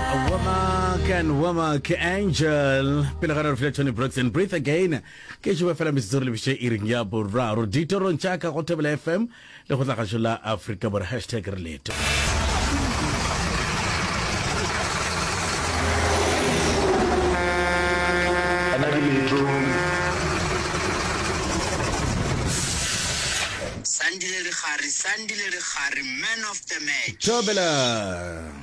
Womack and Womack Angel pele ga re file Tony Brooks and Breathe Again ke šupa fela metsotso re lebiše iring ya boraro ditorong tša ka go thobela fm le go tlagašo la afrika bore hashtag re leto Sandile Rigare, Sandile Rigare, man of the match. thobela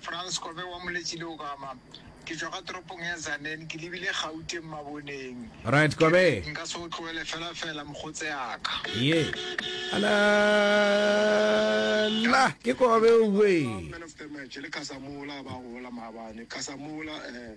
Frans Kobe wa Moletši le Ogama. Ke tšwa ka toropong ya Zanen, ke lebile Gauteng maboneng. Right, Kobe. Ke re, nka se go tlogele fela fela, mokgotseaka. Ye. Ala, la, ke Kobe, uwe. Ke tloga ka man of the match le Kasamola, ba gola maabane. Kasamola, eh.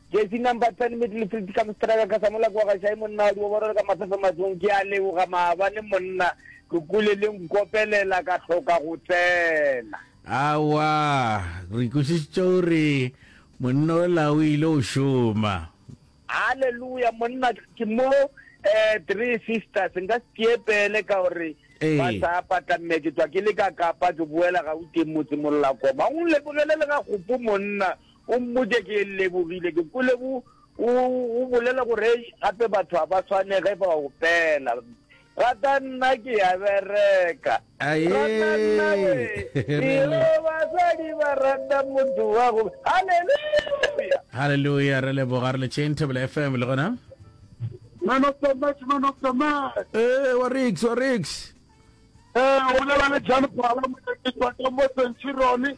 Jersey number 10 Middlefield ka Mstraka ka Samola kwa Gashai monna wa Dioboro le ka Mafefe Matsong ke a leboga maabane monna Tlokole le nkopelela ka hloka go tsena. Aowa re ikwešišitše gore monna o la o ile go šoma. Hallelujah monna ke mo eh three sisters nka se tiepele ka gore Ee. ba sa patla mme ke tswa ke le ka kapa ke boela ga uteng motse mollakoma o lebogele le ga gopo monna O mmotše, Ke lebogile, ke kwele bo, o, o bolela gore gape batho ga ba swane ge ba opela. Rata nna ke ya bereka. Aye. Rata nna we. Eo basadi ba rata motho wa go. Hallelujah. Hallelujah, re leboga re le Chain Table FM le gona. Man of the match, man of the match. Eh, wa Rix, wa Rix. Eh, o lebale Jan Phala, mo ke tswa ka mo Centurion.